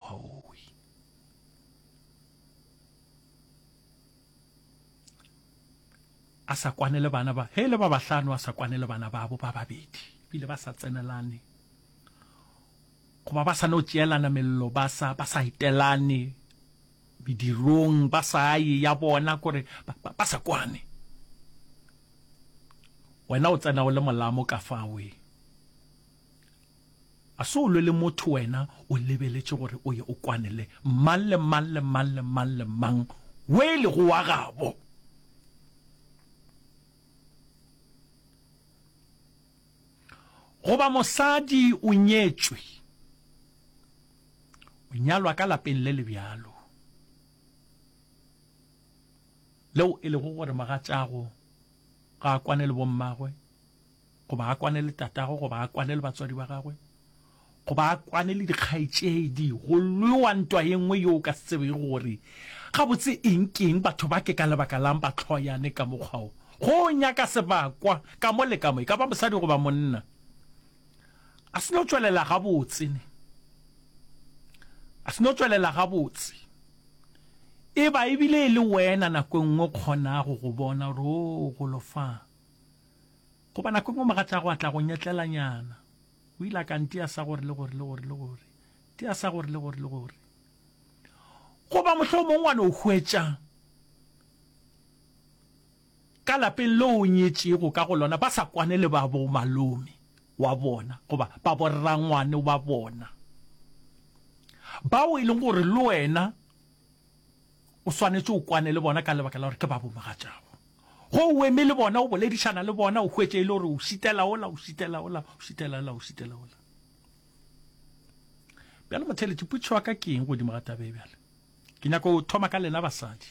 Hooy! A sa kwane le bana ba, he le ba bahlano, a sa kwane le bana babo ba babedi. Bile ba sa tsenelane, goba ba sa no tšeelana mello, ba sa, ba sa etelane medirong, ba sa ye ya bona, kore ba, ba, ba sa kwane. Wena o tsena o le molamo ka fawe. A se o lwe le motho wena o lebeletše gore o ye o kwane le mang le mang le mang le mang le mang wo e lego wa gabo. Goba mosadi o nyetšwe, o nyalwa ka lapeng le le bjalo, leo e lego gore mogatšago ga a kwane le bommagwe, goba a kwane le tatago goba a kwane le batswadi ba gagwe goba a kwane le dikgaetšedi go lwewa ntwa ye nngwe yo o ka se tsebege gore gabotse eng keng batho ba ke ka lebaka lang ba tlhoyane ka mokgwao go nyaka sebakwa ka mo le ka mo e ka ba mosadi goba monna a se no tswelela gabotse ne a se no tswelela gabotse e ba ebile e le wena nako e nngwe kgonago go bona gore o golofang Goba nako engwe mogatšago a tla go nyetlelanyana. O ile a ka ntia sa gore le gore le gore le gore. Tia sa gore le gore le gore. Goba mohlomongwe wa no hwetša ka lapeng le o nyetšego ka go lona ba sa kwane le ba bo malome wa bona goba ba borrangwane wa bona bao e leng gore le wena O swanetše o kwane le bona ka lebaka la gore ke ba bomogatšago. Ge o eme le bona, o boledišana le bona, o hwetše e le gore o šitela ola, o šitela ola, o šitela ola, o šitela ola. Bjale motheletši, putšo wa ka ke eng godimo ga tabe bjale? Ke nyaka o thoma ka lena basadi.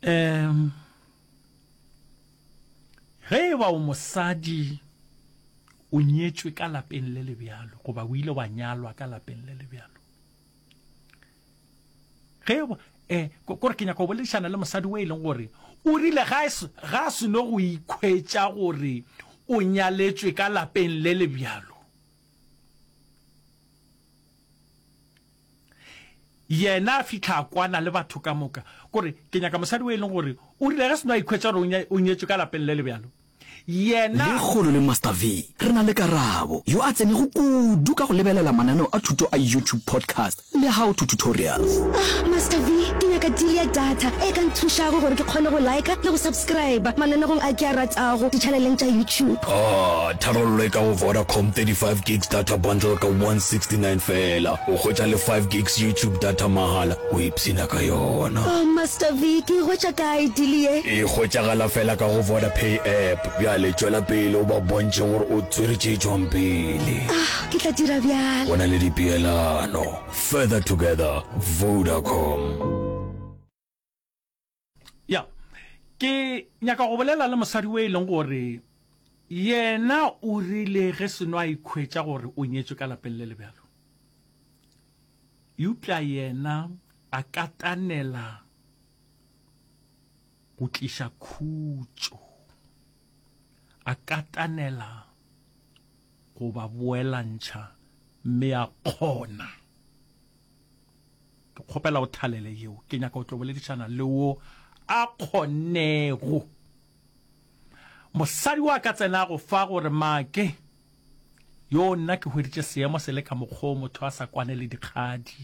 Um Ge e ba o mosadi o nyetšwe ka lapeng le le bjalo goba o ile wa nyalwa ka lapeng le le bjalo ge um eh, kore ke nyaka go boledišana le mosadi o e leng gore o rile ga a seno go ikhwetša gore o nyaletšwe ka lapeng le le bjalo Yena a fihla a kwana le batho ka moka, gore, Ke nyaka mosadi o e leng gore o rile ge seno a ikhwetša gore o nyetšwe ka lapeng le le bjalo. Yena. Lekgolo le Master V, re na le Karabo, yo a tsenego kudu ka go lebelela mananeo a thuto a YouTube podcast le How to Tutorials. Ah, Master V, ke nyaka deal ya data e ka nthušago gore ke kgone go liker le go subscriber mananegong a ke a ratago dichaneleng tša YouTube. Oh, Tharollo e ka go Vodacom 35 gigs data bundle ka 169 feela. O hwetša le 5 gigs YouTube data mahala, o ipshina ka yona. Oh Master V, ke e hwetša kae deal ye? E hwetšagala feela ka go Vodapay app. Bjale tšwela pele o ba bontšhe gore o tswere tše tšwang pele. Ah, ke tla dira bjalo. Go na le dipeelano. Further together, Vodacom. ya ke nyaka go bolela le mosadi o e leng gore yena o rile ge seno a ikhwetša gore o nyetswe ka lapeng le lebjalo eupša yena a katanela go tliša khutšo a katanela go ba boelantšha mme a kgona Ke kgopela o thalele yeo. Ke nyaka o tlo boledišana le wo a kgonnego. Mosadi wa ka tsenago fa gore make yo nna ke hweditše seemo se le ka mokgoo motho a sa kwane le dikgadi.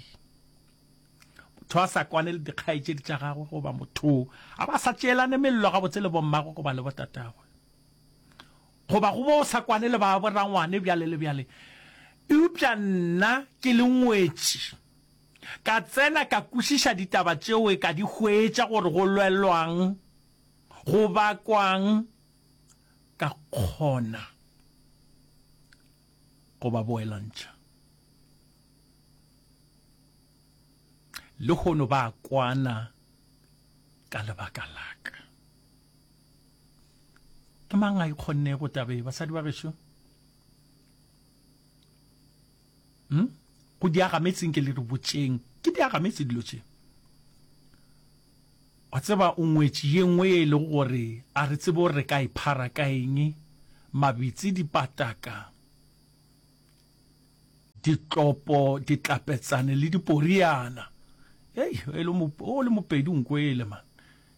Motho a sa kwane le dikgaetšedi tša gagwe goba motho a ba sa tšeelane mello gabotse le bommagwe goba le botatagwe. Goba go bo sa kwane le ba borangwane bjale le bjale. Eupša nna ke le ngwetši, ka tsena ka kwešiša ditaba tšeo e ka di hwetša gore go lwelwang, go bakwang, ka kgona go ba boelantšha. Lehono ba a kwana ka lebaka la ka. Ke mang a ikgonnego tabe basadi ba gešo? Hmm? Go diagametseng ke le re botšeng. Ke diagametse dilo tše. Wa tseba o ngwetši ye nngwe e le gore a re tsebe gore re ka iphara ka eng mabitsi dipataka ditlopo ditlapetsane le diporiana. Hey, o le mopedi nko ele man.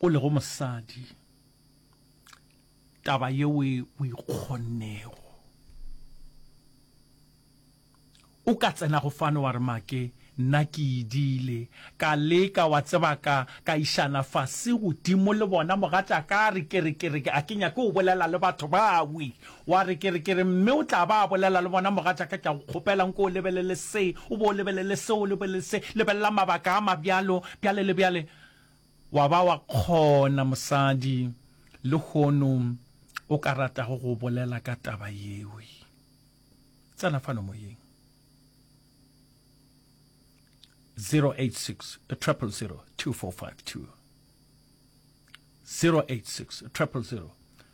o lego mosadi taba yeo e o ikgonnego o ka tsena go fano wa re make nna ke idile ka leka wa tseba ka ka išana fase godimo le bona mogatša ka re ke re ke re a ke nyake o bolela le batho ba wi Wa re, Ke re, ke re, mme o tla ba a bolela le bona, mogatšaka, ke a go kgopela, nke o lebelele se, o bo o lebelele se, o lebelele se, lebelela mabaka a mabjalo, bjale le bjale. Wa ba wa kgona, mosadi, lehono o ka ratago go bolela ka taba yeo. Tsena fano moyeng. 086 000 2452. 086 000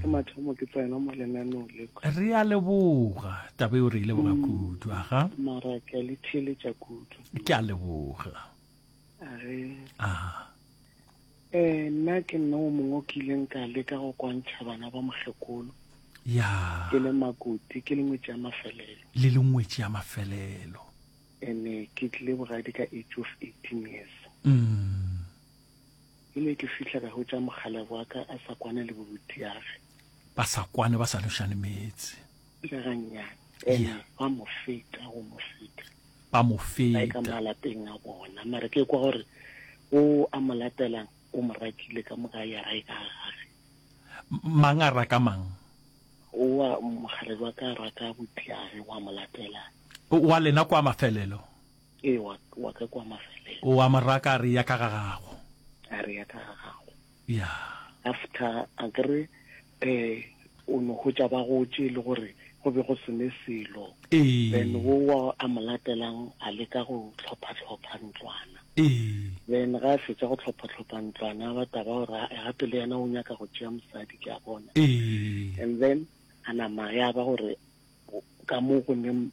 ke mathomo ke tsena mo lenanong le re a leboga taba eo re e leboga mm. kudu aga mara ke a le theletša kudu ke a leboga age aha eh nna ke nna o mongwe o ke ileng ka leka go kwantšha bana ba mokgekolo ya ke le makuti ke lengwetši ya mafelelo le lengwetši ya mafelelo ene ke tlile bogadi ka age of eighteen years mm. Ke ile ke fihla ka hwetša mokgalabje wa ka a sa kwane le boruti yage. Ba sa kwane, ba sa nošane meetse. Ile ga nnyane, ene ba mo feta, go mo feta. Ba mo feta. Ba e ka malapeng a bona, mara ke kwa gore o a mo latelang o mo rakile ka moka ya ra e ka gage. Mang a raka mang? Owa mokgalabje wa ka a raka butiage, wa mo latela. Wa lena kwa mafelelo. Ee, wa, wa ka kwa mafelelo. O a mo raka a re ya ka ga gago. A re ya ka ga gago. Ya. After a ke re um o no hwetša ba gotše le gore go be go se ne selo. Ee. Then wo wa a mo latelang a leka go hlopha-hlopha ntlwana. Ee. Then ga a fetša go hlopha-hlopha ntlwana ba taba gore ae gape le yena o nyaka go tšea mosadi ke a bona. Ee. And then a nama ya ba gore ka mo go neng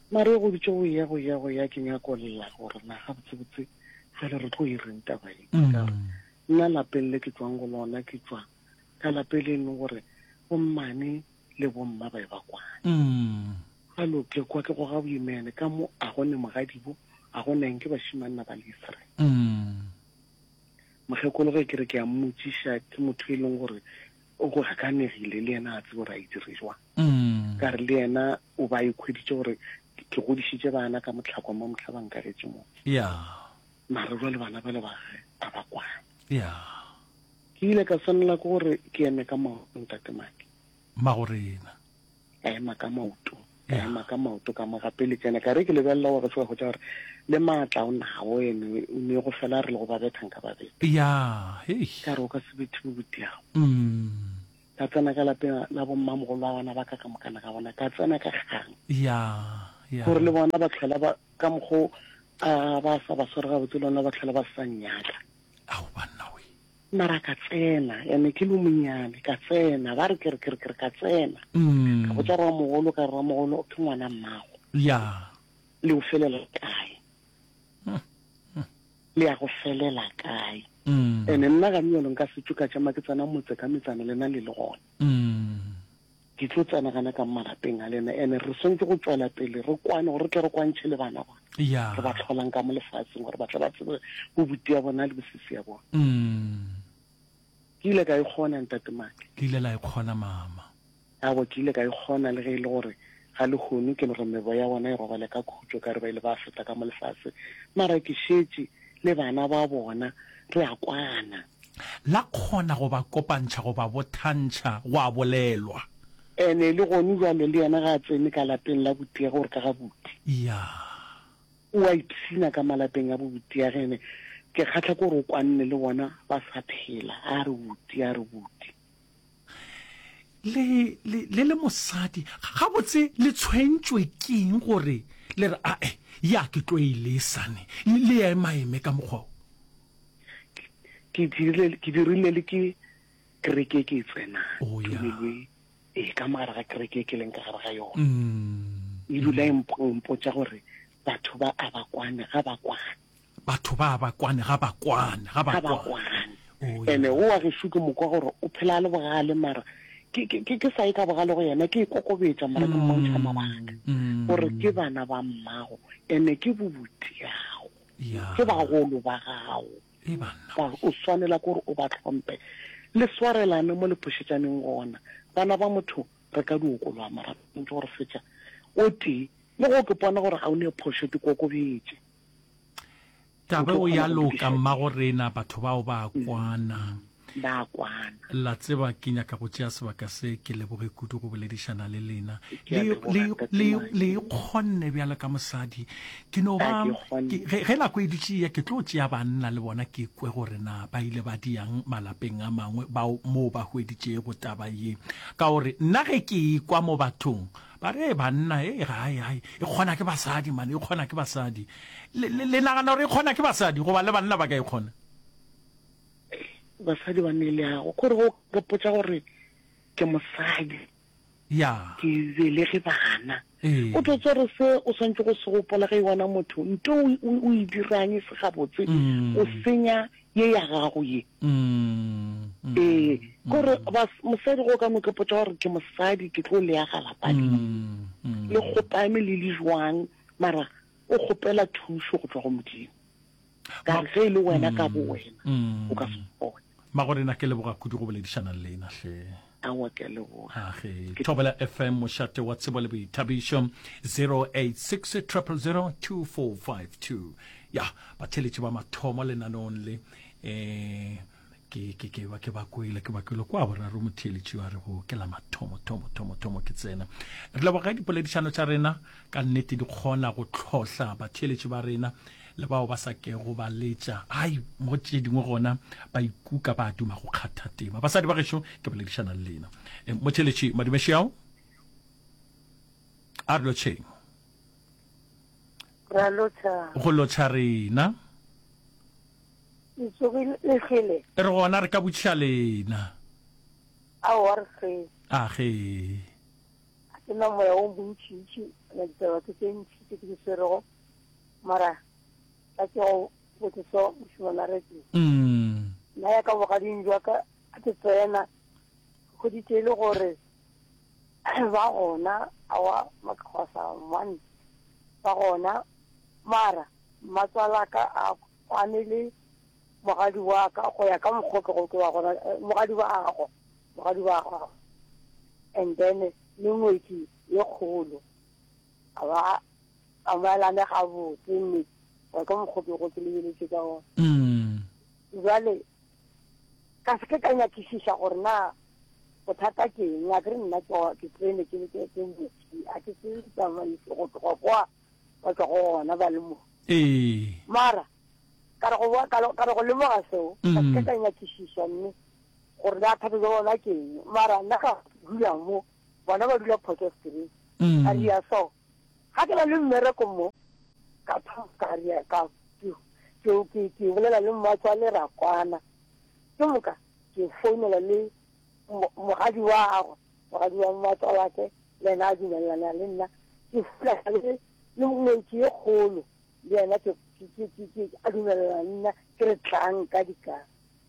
Maria go dutše go eya, go eya, go eya, ke nyako lla gore na gabotsebotse fale re tlo e reng taba ye. Ke ka re, nna lapeng le ke tšwang go lona, ke tšwa ka lape le leng gore bommane le bomma ba e ba kwane. Ga lo ke kwa ke goga boimene, ka mo a go ne mogadibo, a go neng ke bashimanna ba lesre. Mokgekolo ge ke re ke a mmotšiša, ke motho e leng gore o go gakanegile, le yena a tsebe gore a e dire jwang. Ka re le yena o ba ikhweditše gore ke godišitše bana ka mohlakwa mo mohla ba nkagetše mo. Mara jwale bana bale ba ge a ba kwane. Ke ile ka swanela ke gore ke eme ka maoto ntate Maki. Magorena. Ka ema ka maoto ka ema ka maoto ka mo gape le tsena ka re ke lebelela gore se wa hwetša gore le maatla o nago ene o ne go fela re le go ba betha nka ba betha. Ka re o ka se bethe bobutiago. Ka tsena ka lapeng la bommamogolwagona ba ka ka mokana ga bona. Ka tsena ka kgang. Ya, ya. Gore le bona ba tlhola ba, ka mokgo a ba sa ba sware gabotse le ona ba tlhola ba sa nnyaka. Ao banna we. Mara ka tsena, ene ke le monyane, ka tsena, ba re ke re, ke re, ke re, ka tsena. Ka botsa rramogolo, ka re, Rramogolo, ke ngwana mmago. Ya. Le o felela kae? le ya go felela kae mm. ene nna ga nyalo nka setšo ka tšama ke tsena motse ka metsana lena le le gona mm. ke tlo tsena gana ka malapeng a lena ene re swantse go tswela pele re kwane gore re tle re kwantšhe le bana bona re ba tlholang ka mo lefatsheng gore ba tle ba tsebe bobuti ya bona le bosisi ya bona mm. ke ile ka e kgona ntatemake ke ile la e kgona mama A Wa ke ile ka e kgona le ge e le gore ga lehono ke le gore mebo ya bona e robale ka khutšo ka re ba ile ba feta ka mo lefase, mara ke šetše le bana ba bona re a kwana. La kgona go ba kopantšha go ba bothantšha, gwa bolelwa. And e le gonu jwalo le yena ga a tsene ka lapeng la botiage gore ka ga buti. Ya. O a ipshina ka malapeng a bo botiage and ke kgatlha ke gore o kwanne le bona ba sa phela, a re buti, a re buti. le le le le mosadi ga botse le tshwentšwe keng gore le re ae ya ke tlo e le sane le ya emaeme ka mokgwa o ke dirile ke dirile le ke kereke ke tsena oh, ya e ka mogare ga kereke ke leng ka gare ga yone mm. e dula e mpotsa gore batho ba a ba kwane ga ba kwane Batho ba ba kwane, ga ba kwane, ga ba kwane. Ene o wa gešu ke mokwa gore o phela a le bogale mara ke sa ye ka bogale go yena ke e kokobetša mara ke mmontšha mabaka gore ke bana ba mmago ene ke bobutiago ke bagolo ba gago ba o swanela gore o ba tlhompe le swarelane mo le phošetšaneng gona bana ba motho re ka diokolwa mara ntse gore fetša o tee le go ke pona gore ga o ne phošo ke kokobetše Taba o ya loka mmago rena batho bao ba mm. kwana ba kwana la tseba ke nyaka go tšea sebaka se ke leboge kudu go boledišana le lena le ikgonne bjalo ka mosadi ke no ba ge nako e dutše ya ke tlo tšea banna le bona ke kwe gore na ba ile ba diyang malapeng a mangwe bao moo ba hweditšego taba ye ka gore nna ge ke ikwa mo bathong Ba re, Banna, ee, ga, ga, ga, e kgona ke basadi, man, e kgona ke basadi. Le, le, le nagana gore e kgona ke basadi, goba le banna ba ka e kgona? Basadi ba ne le yago, gore go gopotsa gore ke mosadi. Ya. Ke belege bana. Ee. O tlo tswa gore se o swantse go se gopola ge e wana motho, nto o, o, o e diranye se gabotse, o senya ye ya gago ye ee gore mosadi go ka mokepotsa gore ke mosadi ke tlo leya galapadi le kgopame le le jwang mara o kgopela thuso go tswa go modimo ka ge e le wena ka bo wena o ka se kgone magorena ke leboga kudu go boledišanang le ena hle Aowa, ke a leboga. Age, Thobela FM, mošate wa tsebo le boithabišo, 086 000 2452. Ya, batheletši ba mathomo lenaneong le, eh, ke, ke, ke, ba, ke ba kwele, ke ba kwele. Kwa boraro motheletši wa re go ke la mathomo, thomo, thomo, thomo ke tsena. Re leboga dipoledišano tša rena, ka nnete di kgona go tlhohla batheletši ba rena, le bao ba sa kego ba letša ai mo tše dingwe gona ba ikuka ba duma go kgatha tema basadi ba gešo ke boledišana le lena e, motheletši madumešeao a re lotšheng go lotšha rena e re gona re ka botšiša lena a ge ke na moya o bontšintši na ditaba tse tse ntši tse ke di swerego Mara, ka ke go botse so, mošemana Reddy. Nna ya ka bogading jwa ka a ke tsena, ke hweditše e le gore ba gona, aowa makgwasa one ba gona, mara mmatswala ka a kwane le mogadi wa ka go ya ka mokgwa o ke go ke wa gona, mogadi wa gagwe, mogadi wa gagwe. And then le ngwetši ye kgolo. a ba a maelane ga botse mme wa ka mokgopi go ke lebeletse ka ona mm. jwale ka se ke ka nyakisiša gore na bothata ke eng a ke re nna ke tsene ke ke ke motsi a ke se tsamaise go tloga kwa ba tswa go gona ba le mo ee mara ka re go boa ka re- ka re go lemoga seo ka se ke Mm. ka nyakisiša mme gore na thata ja bona ke eng mara nna ka dula mo bona ba dula Potchefstroom, a ria so. Ga ke na le mmereko mo, ka thoma ka ria ka ke, ke, ke, ke bolela le mmatswale ra kwana. Ke moka ke founela le mo- mogadi wa gagwe, mogadi wa mmatswalake le yena a dumelelana le nna. Ke founela le, le ngwetši e kgolo le yena ke, ke, ke, ke, ke a dumelelana le nna, ke re tlang ka dikana.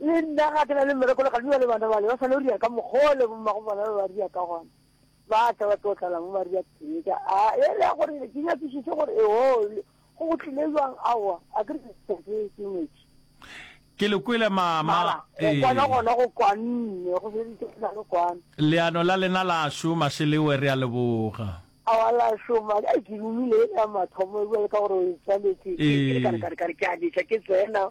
Le nna ga ke na le mmereko le Kgalbi ba le bana bale ba swanelo dira ka mokgole bommago bona ba ba dira ka gona. Ba tla ba tlo tlala mo ba dira tee ka a e le gore ke nyakišiše gore e ho go go tlile jwang aowa a ke re ke ke metši. Ke le kwele mama. Mara go kwana gona go kwanne go se ditse na le kwana. Leano la lena la šoma Shelewe re a leboga. Aowa la šoma ai ke rumile ya mathomo e bua le ka gore o e tswaletše ke ka re ka re ke a letša ke tsena.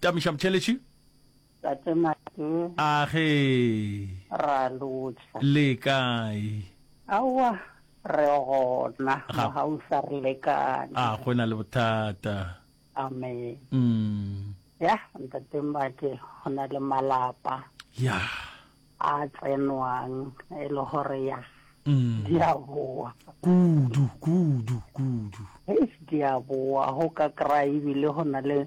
Tamiša Motšheletši. Tate Mate. A ge. Ra lotšha. Le kae? Aowa, re gona. Ga. Ga o sa re lekane. A go na le bothata. Amen. Mm. Ya, Ntate Mate, go na le malapa. Ya. A tsenwang e le gore ya. Mm. Di a boa. Kudu, kudu, kudu. Eish, di a boa, go ka kry-a ebile go na le.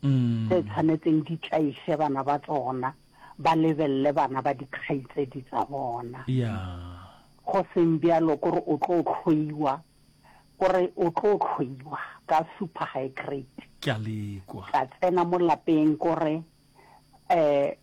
tse tshwanetseng di tlaiše bana ba tsona ba lebelele bana ba dikgaitsedi tsa bona. Go seng bjalo ko re o tlo hloiwa, ko re o tlo hloiwa ka super high grade. Ke a lekwa. Ka tsena mo lapeng ko re um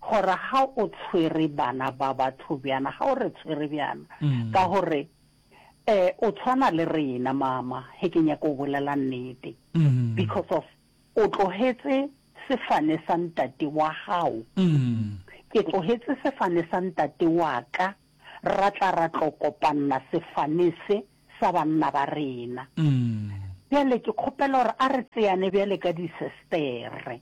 Gore ga o tshwere bana ba batho bjana, ga o re tshwere bjana, ka gore um o tshwana le rena mama, ge ke nyaka go bolela nnete, because of o tlogetse sefane sa ntate wa gago, ke tlogetse sefane sa ntate wa ka, ra tla ra tlo kopanna sefane se sa banna ba rena. Bjale ke kgopela gore a re tseane bjale ka disestere.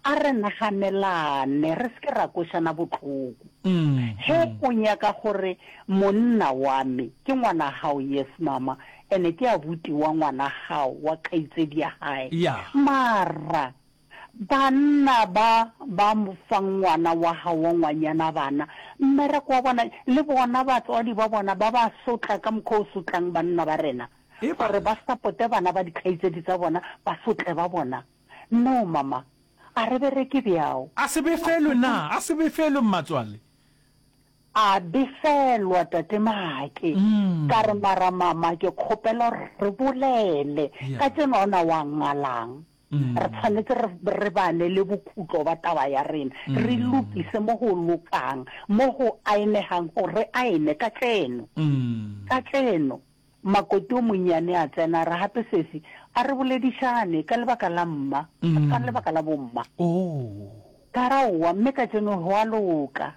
A re naganelane, re se ke ra kwešana bohloko. Ge o nyaka gore monna wa me ke ngwana gago, yes mama, ene ke abuti wa ngwana gago, wa kgaitsedi ya gae. Mara Banna ba ba fang ngwana wa gago ngwanyana bana, mmereko wa bona, le bona batswadi ba bona ba ba sotla ka mokgwa o sotlang banna ba rena, Eba. gore ba sapote bana ba dikgaitsedi tsa bona, basotle ba bona. No, mama. A re bereke bjao. A se befelwe na? A se befelwe, mmatswale? A befelwa, Tate Maake. Ka re, Mara, mama, ke kgopela gore re bolele Yeah. kajeno, a o ne wa ngalang? Re tshwanetse re, re bane le bokutlo ba taba ya rena, re lokise mo go lokang, mo go aenegang, gore re aene ka tseno. Ka tseno. Makoti o monnyane a tsena, a re, Gape, Sesi, a re boledišane ka lebaka la mma, ka lebaka la bomma. Ka ra, Owa, mme ka tseno go a loka.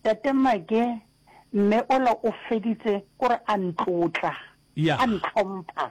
Tate Make, mme ola o feditse, o re a ntlotla, a ntlhompha.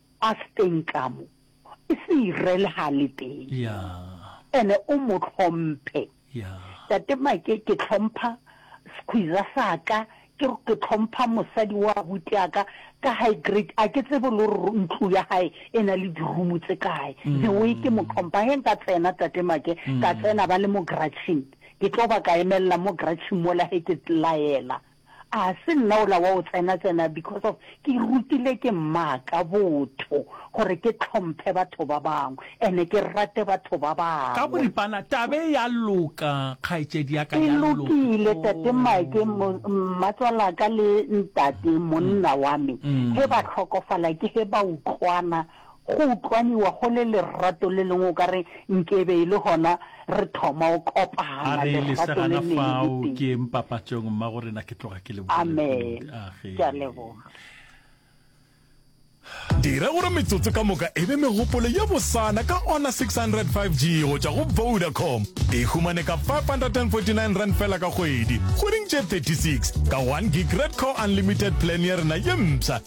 A se teng ka mo. E se e rel ha le teng. Ene o mo hlomphe. Tate Make ke hlompha skhwiza sa ka, ke ke hlompha mosadi wa abuti ya ka, ka high grade. A ke tsebe le hore ntlo ya hae e na le di-room tse kae. The way ke mo hlompha, he nka tsena Tate Make, ka tsena ba le mo garage-ing, ke tlo ba ka emelela mo garage-ing mola he ke laela. A se nna ola wa go tsena tsena because of ke rutile ke mmaka botho gore ke tlhomphe batho ba bangwe and ke rate batho ba Ka bangwe. boripana taba e ya loka kgaetšedi ya ka E ya loka. lokile tate Mike mo mmatswalaka le ntate monna wa me he ba hlokofala ke he ba utlwana Go utlwaniwa go le lerato le lengwe o ka re nke e be e le gona re thoma go kopana, A re lerato le lesegana lengwe le fao ke tee. yeng papatšong, Mmagorena, ke tloga ke lebogile Amen. kudu. Age. Ke a leboga. Dira gore metsotso ka moka e be megopolo ye bosana ka Honor 600 5G go tšwa go Vodacom. E humane ka R549 fela ka kgwedi, kgweding tše 36, ka one gig Red Core Unlimited Plan ya rena ye mpsha.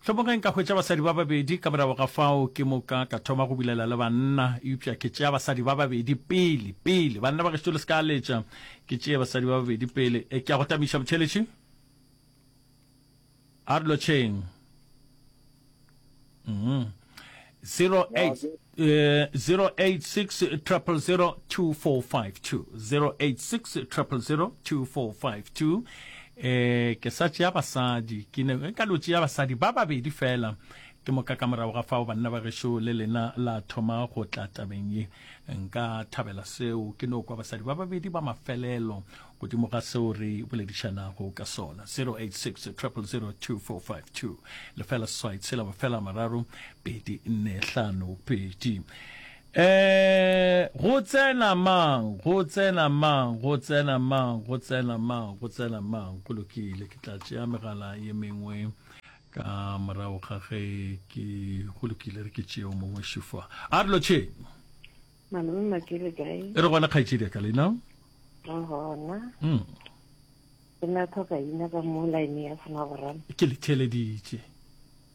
Hlomogeng ka hwetša basadi ba babedi, ka morago ga fao ke moka ka thoma go bulela le banna, eupša ke tšea basadi ba babedi pele, pele. Banna ba gešo le se ka letša ke tšee basadi ba babedi pele. Ke a go tamiša, motheeletši. A re lotšheng. Umm. 0860002452 ke sa tšea basadi ke ne ka lo tšea basadi ba babedi fela ke moka ka morago ga fao banna ba gešo le lena la thoma go tla tabeng ye nka thabela seo ke no kwa basadi ba babedi ba mafelelo godimo ga seo re boledišanago ka sona 0860000245 lefela seswai tshela mafela mararo pedi nne hlano pedi eh go tsena mang go tsena mang go tsena mang go tsena mang go tsena mang go lokile ke tla tšea megala ye mengwe ka morago ga ge ke go lokile re ke tšeo mongwe šufa a re lotšheng Malome Maki le kae? E re gona kgaetšedi ya ka le nang? Re gona. Mm. Ke na tlhoka ina ka mo line ya sona borana. Ke le theleditše.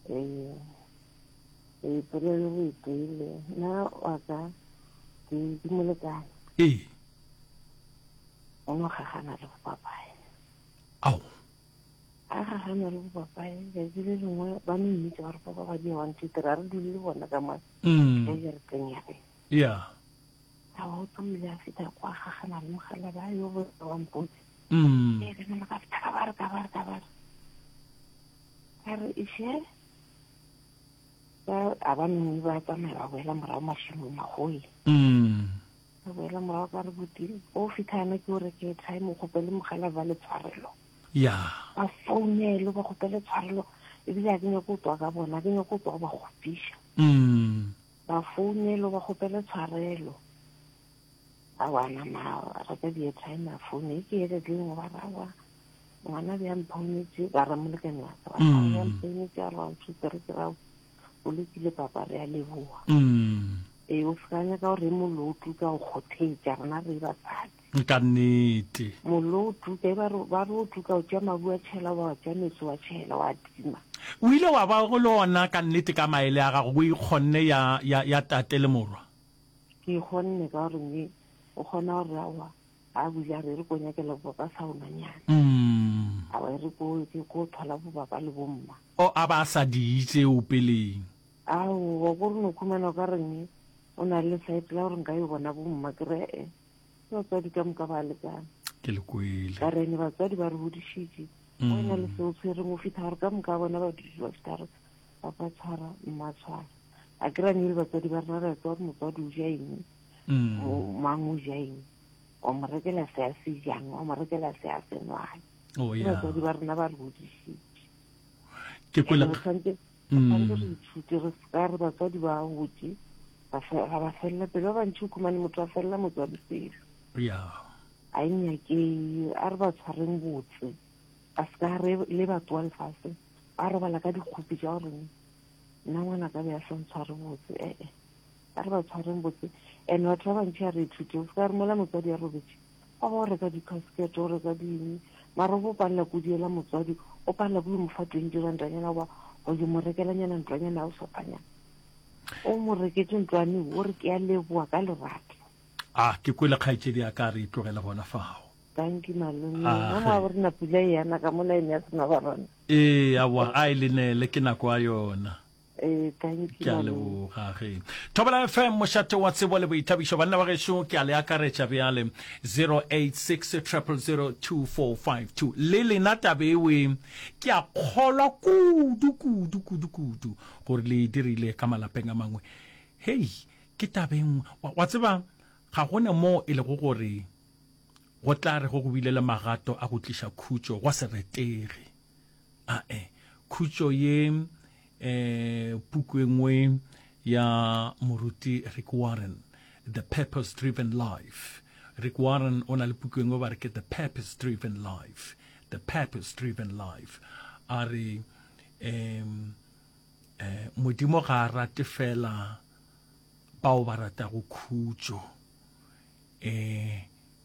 Ee. Ee, polelo o e kwele. Na wa ka ke ke molekane. Ee. O no gagana le go papaya. Ao. a ga ga na le go papae letsatsi le lengwe ba no mmitsa ba re papa ba di one two three a re dule le bona ka mane mm. ka jareteng ya rena ya a o tsamaile a feta kwa ga ga na le mogala ba yo bo wa mpotse mm. e re nna ka feta ka ba re ka ba re ka ba re a re ishe ba a ba nngwe ba tsamaya ba boela morago mashimong a goe mm. Re boela morago ka re buti o fitlha yana ke o re ke try mo kgopele mogala ba le tshwarelo ya ba founelo ba kgopele tshwarelo ebile a ke nyako o tswa ka bona a ke nyako o tswa go ba kgopiša mm. ba founelo ba kgopele tshwarelo a wana ma reka di airtime a foune ke ere ke lengwe ba rawa ngwana bja mphaunetse ba ramolekane wa ka ba mm. mphaunetse a re wa ntshutere ke rawa o lekile papa re a leboa mm. ee o seka nyaka gore mollo o tuka go kgothetša rena re basadi ka nnete mollo o tuka e ba re o tuka o tša mabu a tšhela wa tša metsi wa tšhela wa tima o ile wa ba go le ona ka nnete ka maele a gago o ikgonne ya, ya, ya tate le morwa ke ikgonne ka gore me o kgona gore awa a bule a re re ko nyakela bobaba saunanyana mm. a re ko ke ko thola bobaba le bomma o a ba sa diitse o peleng ao wa go re no khumana ka reng o na le site la gore nka yo bona bomma ke re e ke batswadi ka moka ba lekana ke le kwele ka rene batswadi ba re hodišitše mm. o na le seo tshwereng o fitlha gore ka moka bona ba dutse ba fitlha gore papa tshwara mma tshwara a ke rane le batswadi ba rena re tsa gore motswadi o ja eng mang o ja eng wa mo rekela se a se jang wa mo rekela se a se nwang oh, ke batswadi ba rena ba re godisitse ke kwela tshwanetse re ithute re seka re batswadi ba gotse ga ba felela pele ba bantšhi o khumane motho a felela motswadi pelo a e nyake a re ba tshwareng botse a seka re le batho wa lefatshe ba robala ka dikgopi ja goreng nna ngwana ka be a sa ntshware botse ee A re ba tshwareng botse and batho ba bantši a re ithute o se ka romela motswadi ya robetše wa ba o reka di-casket o reka ding mara o bo palela ko diela motswadi o palela ko yo mo fa twenty randanyana goba go yo mo rekelanyana ntlwanyana ya go sofanyana o mo reketse ntlwane o re ke a leboa ka lerato a ah, ke kwele kgaetšedi ya ka re e tlogele gona fago thank you malome ah, mo a gore na pula e yana ka mo line ya sena ba rona ee awa a e lenele ke nako a yona Eh, ke a leboga ge thobela fm mošate wa tsebo le boithabišo banna ba gešo ke a le akaretša bjale 0860002452 le lena tabewe ke a kgolwa kudu kudu kudu kudu gore le e dirile ka malapeng a mangwe hei ke tabeng wa tseba ga gone moo e lego gore go tla re go go bile le magato a go tliša khutšo gwa se retege a e khutšo ye e puku e nngwe ya moruti rick warren the purpose driven life rick warren o na le puku e nngwe ba re ke the purpose driven life the purpose driven life a re um eh, modimo ga a rate fela bao ba ratago khutšo e,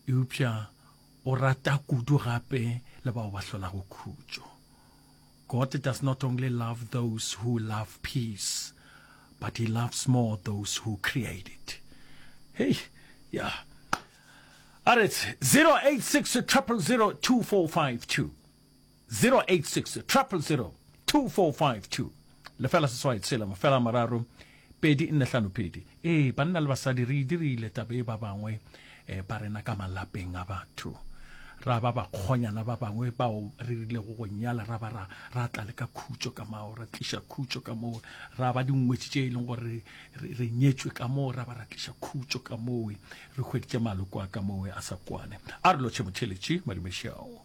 eupša o rata kudu gape le bao ba hlolago khutšo. God does not only love those who love peace, but he loves more those who create it. Hey, yeah. All right, 086 000 2452. 0860002452, lefela seswai tshela mafela a mararo pedi nne hlano pedi. Ee, banna le basadi re e dirile taba e ba bangwe eh, ba rena ka malapeng a batho ra ba bakgonyana ba bangwe bao re rilego go nyala ra ba ra ra tla le ka khutšo ka mao ra tliša khutšo ka moo ra ba dingwetši tše e leng gore re, re nyetšwe ka moo ra ba ra tliša khutšo ka mowe re hweditše maloko a ka mowe a sa kwane a re lotšhe motheletši madumešao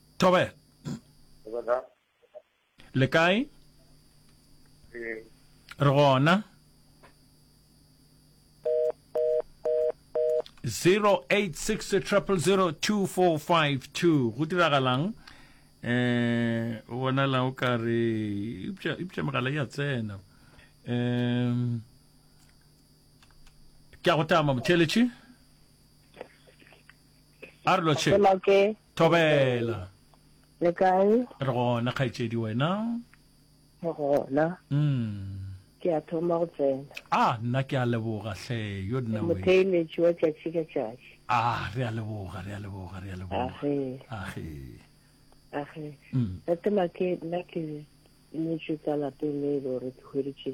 Thobela. Thobela. Le kae? Re. Re gona. 0860000245 go diragalang eh o bonala o ka re ipša ipša megala ya tsena um ke a go tama motheletše a re lotšhe Thobela. Le kae? Re gona kgaetšedi wena? Re gona. Mm. Ke a thoma go tsena. Ah, nna ke a leboga hle, yo nna we. Motheeletši wa tšatši ka tšatši. Ah, re a leboga, re a leboga, re a leboga. Age. Age. Age. Mm. Tatema ke nna ke nyetšwe ka lapeng le e le gore ke hweditše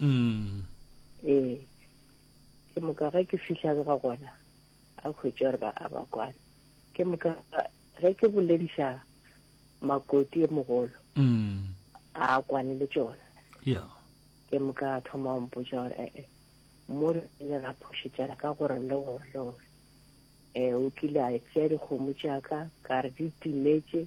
mm. ee ke moka ge ke fihla ga gona a hwetša gore ba a ba kwana ke moka ge ke bolediša makoti e mogolo mm. a kwane le tsona ke moka a thoma o mpotsa gore ee eh, eh, mo re ile ra phošetšana ka gore le gore le gore um o kile a tsea dikgomo tšaka ka re di timetse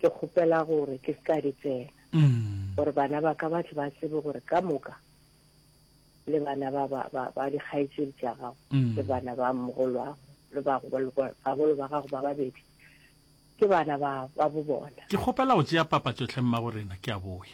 ke kgopela gore ke se ka di tsena mm. gore bana ba ka ba tle ba tsebe gore ka moka le bana ba ba ba ba di khaitsedi tsa gago mm. le bana ba mogolwa le ba go ba go ba gago ba babedi ke bana ba ba bo bona ke kgopela go tšea papa tšotlhe mma go rena ke a boya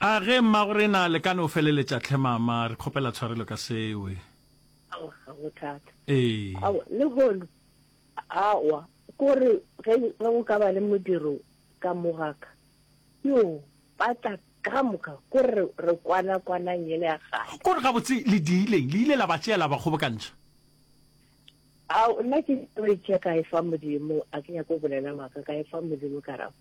A ge mmagorena le ka no feleletša tlhe mama, re kgopela tshwarelo ka sewe. Aowa, ga go thata. Ee. Aowa, lehono, aowa, ko re ge go ka ba le modiro ka mo ga ka, yoo, ba tla ka moka ko re re kwana kwanang yele ya kgale. Ko re gabotse le diileng, le ile la ba tšea la ba kgobokantšha? Ao, nna ke tlo e tšea ka e fa Modimo, a ke nyake go bolela maaka, ka e fa Modimo karabo.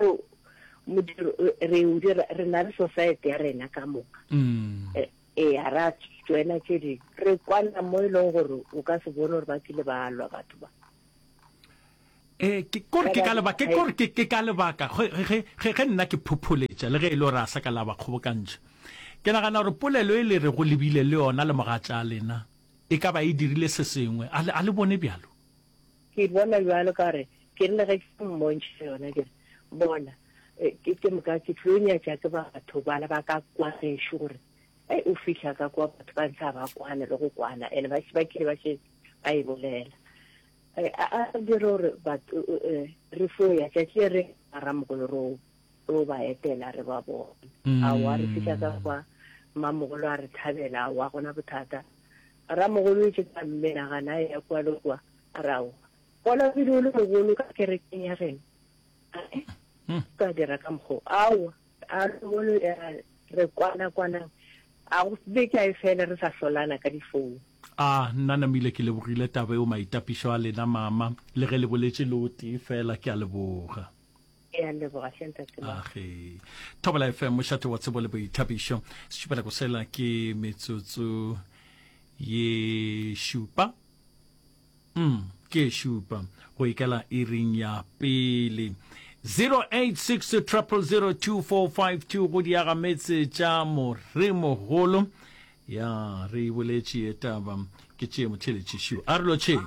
O, modiro, re o dira, re na le society ya rena ka moka. Mm. E, e a ra joina tše ding. Re kwana mo e leng gore o ka se bone gore ba kile ba lwa batho ba. Eh, ke kore ke ka lebaka ke kore ke ke ka lebaka ge ge ge ge nna ke phopholetša le ge e le gore a sa ka la ba kgobokantša ke nagana gore polelo e le re go lebile le yona le mogatša lena e ka ba e dirile se sengwe a le a le bone bjalo Ke e bona bjalo ka gore ke rile ge ke mmontšha yona ke re, Bona, ke, ke moka ke tlo nyatša ke batho bana ba ka kwa gešo gore, Hei, o fihla ka kwa batho ba ntlha ba kwana le go kwana, ene ba, ba kile ba šetše ba e bolela. A, a, a dire gore batho, re fo ya tšatši le re, Ramokolo, re o tlo ba etela re ba bone mm. a wa re fihla ka kwa mamogolo a re thabela a wa gona bothata ramogolo e tšetsa mme nagana a ya kwa le kwa a ra wa bona pele o le mogolo ka kerekeng ya geno mm. ka dira ka mokgo awa a mogolo re kwana kwana a go beke a e fela re sa hlolana ka difounu a nna namile ke lebogile taba eo maitapišo a lena mama le ge le boletse le o tee fela ke a leboga ya leboga hle ntate age thobela fm mošate wa tsebo le boithabišo sešupela go sela ke metsotso ye šupa mm ke šupa go ikela iring ya pele 086 0002452 go diaga metse tša moremogolo ya re boletše ye taba ke tšee motheletši šo a re lotšheng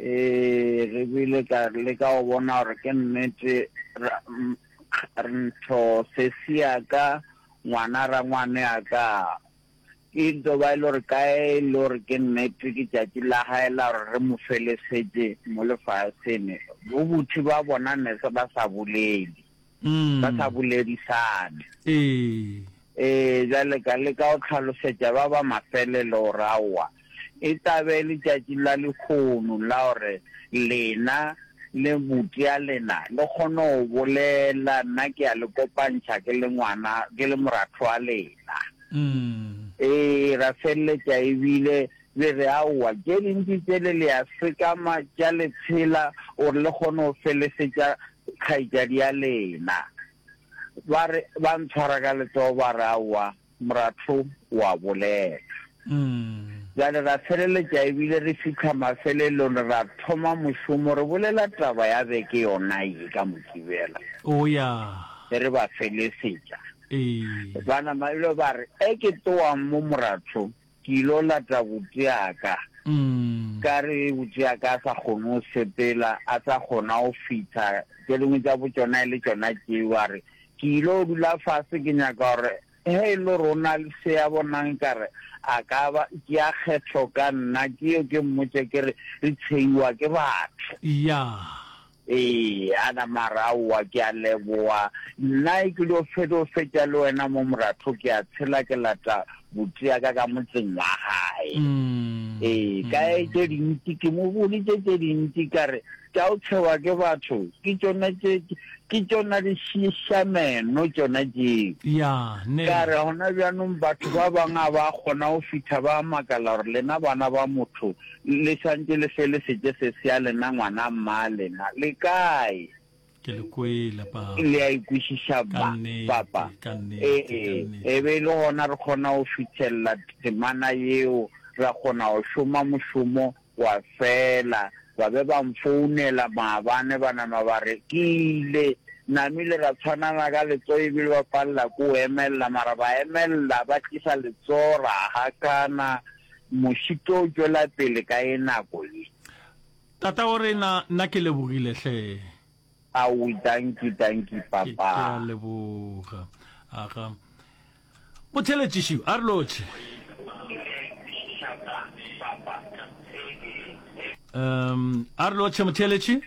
Ee, re bile ka leka go bona gore ke nnete. Ra, ra ntho sesi ya ka, ngwana rangwane ya ka, e nto ba e le gore ka e le gore ke nnete ke tšatši la gae la gore re mo felesetše mo lefaseng, bobuthi ba bona ne se ba sa bolele. ba sa boledisane. Ee, bjale ka leka go tlhalosetša ba ba mafelelo gore aowa, e tla be e le tšatši la lehono la gore lena le buti ya lena le kgone go bolela. Nna ke a le kopantšha ke le ngwana, ke le moratho wa lena. Ee, ra feleletša e bile. Le re, Aowa, tše dintši tšele le a sekama tša le tshela gore le kgone go felesetša kgaetšadi ya lena. Ba re, ba ntshwara ka letsogo ba re, Aowa, moratho o a bolela. Bjale ra feleletša ebile re fihla mafelelong, re a thoma mošomo, re bolela taba ya beke yona ye ka Mokibela. Oya. Be re ba felesetša. Ee. Ba nama ebile ba re, Eke towang mo, moratho. Ke il'o lata butšeaka, ka re ge butšeaka a sa kgone go sepela, a sa kgona go fitha, tše dingwe tša bo tšona e le tšona tšeo, a re, Ke il'o dula fase, ke nyaka gore ge e le gore go na le se a bonang nkare a ka ba ke a kgetho ka nna, ke yo ke mmotše ke re, Re tsheiwa ke batho. Ya. Ee, a nama a re, Aowa, ke a leboa. Nna ke dio feto fetša le wena mo moratho, ke a tshela ke lata buti ya ka ka motseng wa gae. Ee, ka ye tše dintši, ke mo bolitše tše dintši ka re, Tša go tšhewa ke batho ke tšona tše, ke tšona di šiša meno tšona tšeo. Ya, ne. Ka re, Gona bjanong batho ba bangwe ga ba kgona go fihla ba makala gore lena bana ba motho, Le swantše le fe le seke se sea lena ngwana mma lena. Le kae? Ke le kwele, Papa. Le a ikwešiša, Ka nnete, Papa? ka nnete, Ee, ka nnete. e be e le gona re kgona go fithelela temana yeo, ra kgona go šoma mošomo wa fela. Ba be ba nfounela maabane ba nama ba re, Ke ile. Namile ra tshwanana ka letsogo e bile ba palela ke go emelela, mara ba emelela ba tlisa letsogo ra hakana. Moši tlo tšwela pele ka ye nako ye. Tataorena, nna ke lebogile hle. Aui, dankie, dankie, Papa. Ke a leboga. Aga. Motheletšiši, a re lotšhe. Um, a re lotšhe, motheletši.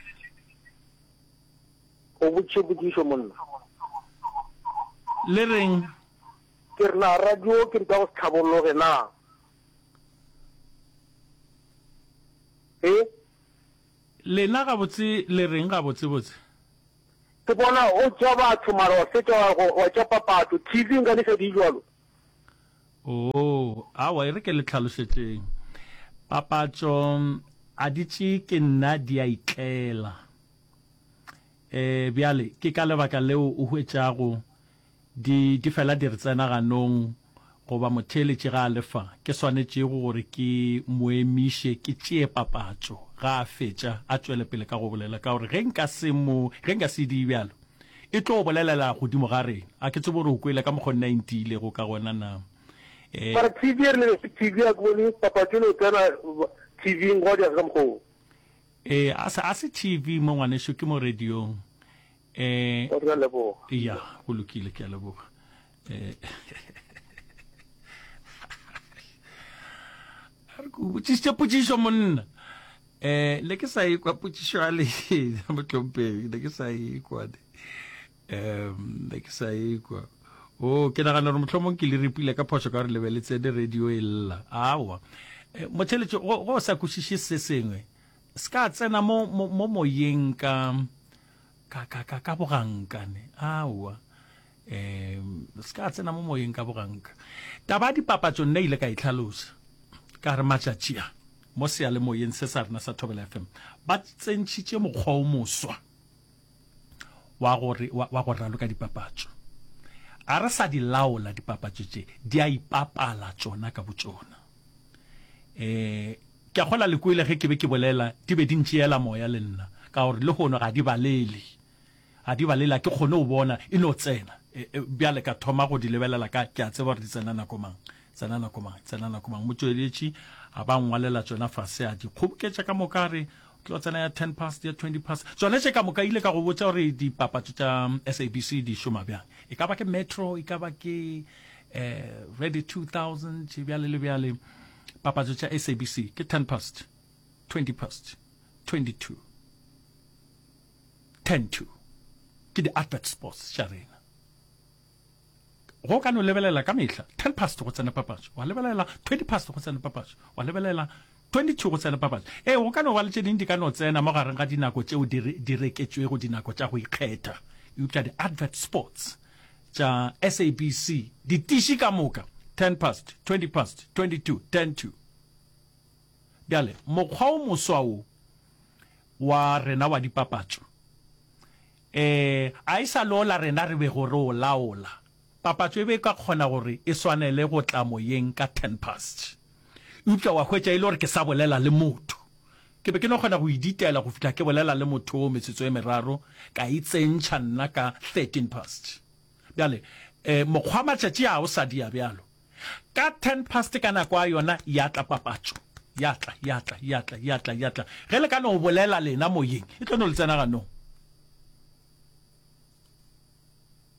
O botše potšišo, monna. Le reng? Ke re na radio ke ntwa go se tlhabologe na? He? Lena gabotse le reng gabotsebotse? Ke bona o tša batho mara wa fetša wa go wa tša papatso, TV nka le sa di jwalo. Oo, awa e re ke le tlhalošetšeng. Papatso a di tše ke nna di a itlela. E, bjale ke ka lebaka leo o hwetšago Di, di fela di re tsena ganong, goba motheeletši ga a le fa, ke swanetšego gore ke Mo emiše, ke tšee papatšo, ga a fetša, a tšwele pele ka go bolela. Ka gore ge nka se Mo, ge nka se die bjalo, E tlo bolelela godimo ga rena. A ke tsebe gore o kwele ka mokgo nna e ntiilego ka gona na. E. Mara TV e rile, TV a ke bone papatšo e no tsena TV-ing, gwa diega ka mokgwa wo. E, a se, a se TV mo, ngwanešu, ke mo radiong. Eh, o re a leboga. Ya, go lokile ke a leboga. Eh. A re go botsisitse potsiso monna. Eh, le ke sa e kwa potsiso ya le motlompedi, le ke sa e kwa. Um, le ke sa e kwa. Oh, ke nagana gore motlhomong ke le repile ka phoso ka gore lebeletse le radio e lla. Awa. Eh, motheletso go go sa kwešiše se sengwe. Se ka tsena mo, mo, mo moyeng ka, ka, ka, ka, ka bogankane. Aowa. Um, se ka tsena mo moyeng ka boganka. Taba ya dipapatso nna ile ka e tlhalosa. Ka re matšatši a, mo seyalemoyeng se sa rena sa Thobela FM, ba tsentšhitše mokgwa o moswa wa gore, wa, wa go raloka dipapatso. A re sa di laola dipapatso tše, di a ipapala tšona ka botšona. Um, Ke a kgolwa le kwele ge ke be ke bolela, di be di ntšeela moya le nna, ka gore lehono ga di balele. Ga di balele, ga ke kgone go bona e no tsena. E, e, bjale ka thoma go di lebelela ka, ke a tseba gore di tsena nako mang, tsena nako mang, tsena nako mang. Motšweletši a ba ngwalela tšona fase, a di kgoboketša ka moka, a re, O tlo tsena ya ten past, ya twenty past. Tšona tše ka moka, ke ile ka go botša gore dipapatšo tša SABC di šoma bjang. E ka ba ke Metro, e ka ba ke, eh, Radio 2000, bjale le bjale. Papatso tša SABC ke ten past, twenty past, twenty two, ten to. Ke di advert spots tša rena. Go ka no lebelela ka mehla ten past go tsena papatso, wa lebelela twenty past go tsena papatso, wa lebelela twenty two go tsena papatso. Ee, go ka no ba le tše ding di ka no tsena mo gareng ga dinako tšeo di reketšwego, dinako tša go ikgetha. Eupša di advert spots tša SABC di tiši ka moka ten past, twenty past, twenty to, ten to. Bjale mokgwa o moswa wo wa rena wa dipapatšo e a e sa lola rena re bego re o laola, papatšo e be e ka kgona gore e swanele go tla moyeng ka ten past. Eupša wa hwetša, e le gore ke sa bolela le motho, ke be ke no kgona go e ditaela go fihla ke bolela le motho woo metsotso e meraro, ka e tsentšha nna ka thirteen past. Bjale, e, mokgwa matšatši a o sa dia bjalo. Ka ten past ka nako a yona, ya tla papatšo. Ya tla, ya tla, ya tla, ya tla, ya tla. Ge le ka no bolela lena moyeng, e tlo no le tsena ganong.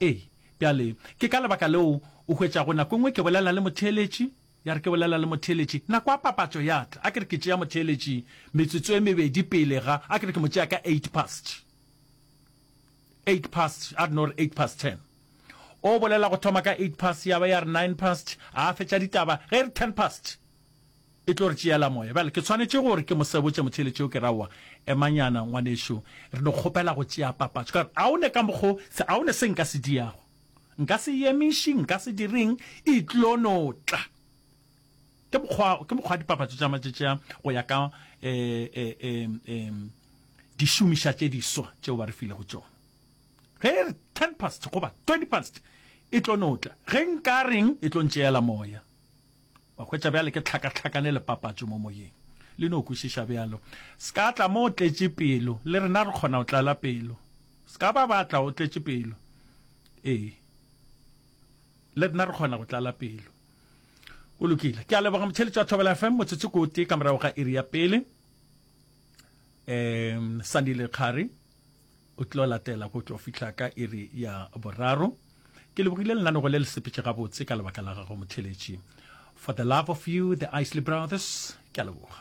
Ee, bjale, ke ka lebaka leo o hwetšago nako e nngwe ke bolela le motheeletši, Ya re ke bolela le motheeletši, nako ya papatšo ya tla, a ke re ke tšea motheeletši metsotso e mebedi pele ga, a ke re ke mo tšea ka eight past, eight past, a re no re eight past ten. O bolela go thoma ka eight past, ya ba ya re nine past, a fetša ditaba, ge e re ten past, e tlo re tšeela moya. Bjale ke tshwanetše gore ke mo sebotše motheeletši yo, ke re, Aowa, emanyana ngwanešu, re no kgopela go tšea papatšo. Ka re, A o ne ka mokgo, se, a o ne se nka se diago. Nka se yemiši, nka se direng, e tlo no tla. Ke mokgwa, ke mokgwa dipapatšo tša matšetšea go ya ka e, e, e, e, dišomiša tše diswa tšeo ba re filego tšona. Ge e re 10 past goba 20 past e tlo no tla, ge nka reng e tlo ntšeela moya. Wa hwetša bjale ke tlhakatlhakane le papatšo mo moyeng. Le no kwešiša bjalo? Se ka tla mo o tletše pelo. Le rena re kgona go tlala pelo. Se ka ba ba tla o tletše pelo. Ee. Le rena re kgona go tlala pelo. Go lokile. Ke a leboga motheletši wa Thobela FM motsotso ko tee ka morago ga iri ya pele. Um, Sandile Kgari. O tlo latela go tlo fihla ka iri ya boraro. Ke lebogile lenaneo le le sepetše gabotse ka lebaka la gago motheletši. For the love of you, the Isley Brothers, ke a leboga.